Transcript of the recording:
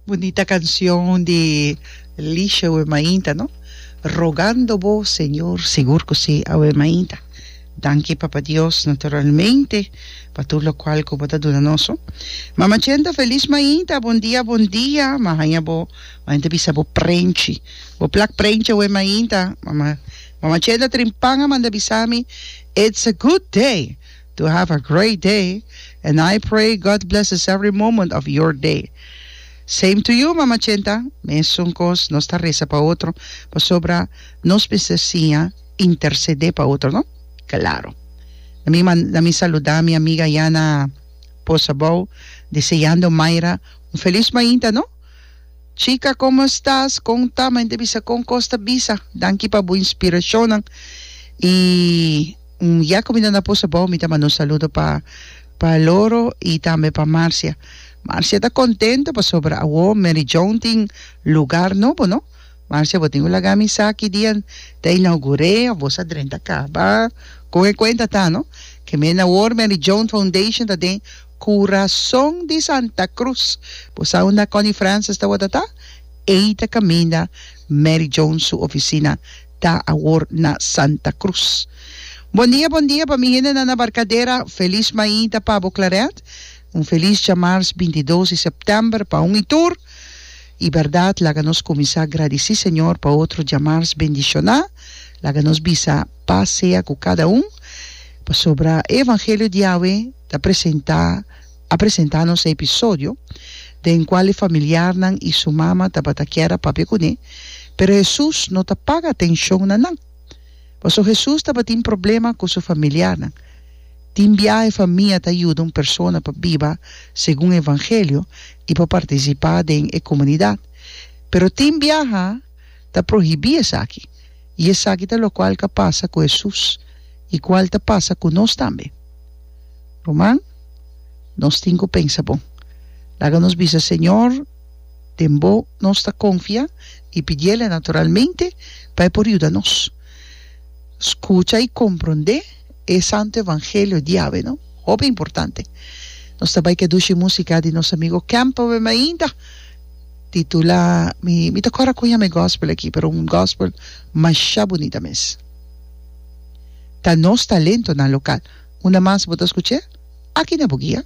Bunita canción di Lisha awe mainta no Rogando bo Señor sigur cu si awe mainta danki Papa Dios naturalmente pa tur lo cual cu bo ta duna nos ho Mama Chenta feliz mainta bon dia bon dia ma haña bo Mama Chenta bisa bo prenchi bo plak prenchi awe mainta Mama Chenta Trinpanga manda bisa mi it's a good day To have a great day and I pray God blesses every moment of your day same to you Mama Chenta mesun cos nos ta reza pa otro pasobra nos mester siña intercede pa otro no claro na mi man na mi saluda mi amiga ya na Bosabow deseando Mayra un feliz mainta no chica como estas con ta men te bisa con cos ta bisa danki pa bo inspiracionnan y. Un ya cu mi ta na pus abao mi ta manda un saludo pa pa Loro y tambe pa Marcia. Marcia ta contento pasobra awo Mary Joan tin lugar nobo no. Marcia bo tin cu laga mi sa ki dia ta inaugure of bo sa drenta caba con e cuenta ta no. Ke men awor Mary Joan Foundation ta den Curason di Santa Cruz. Bo sa unda Connie Francis ta wordata? Ey ta caminda Mary Joan su oficina. ta awor na Santa Cruz. Bon dia bon dia pa mi hende nan na Barcadera felis mainta pa bo Claret un felis djamars binti dos di september pa un y tur y berdad laga nos cuminsa gradeci Señor pa otro djamars bendiciona laga nos bisa paz sea cu cada un pasobra e evangelio di Yahweh ta presenta A presentá nos e episodio den kual e familiarnan i su mama tabata kier a papia kuné, pero Hesus no ta paga atenshon na nan. Pasobra Hesus tabatin problema ku su familiarnan. Tin biahe famia ta yuda un persona pa biba segun e evangelio i pa partisipá den e komunidat. Pero tin biaha. ta prohibí esaki, i esaki ta lokual ka pasa ku Hesus i kual ta pasa ku nos tambe. Ruman, nos tin ku pensa bon. Laga nos bisa Señor den bo nos ta konfia i pidi El naturalmente pa E por yuda nos skucha i komprondé e santu evangelio di Yahwe. No, hopi importante! Nos ta bai kedushi musika di nos amigo Campbell, ma ainda. Titula, Mi mi ta kòrda koña mi gòspel aki, pero un gòspel mashá bunita mes. Ta nos talentonan lokal. Unda mas bo ta skuch'é? Aki na Bugia.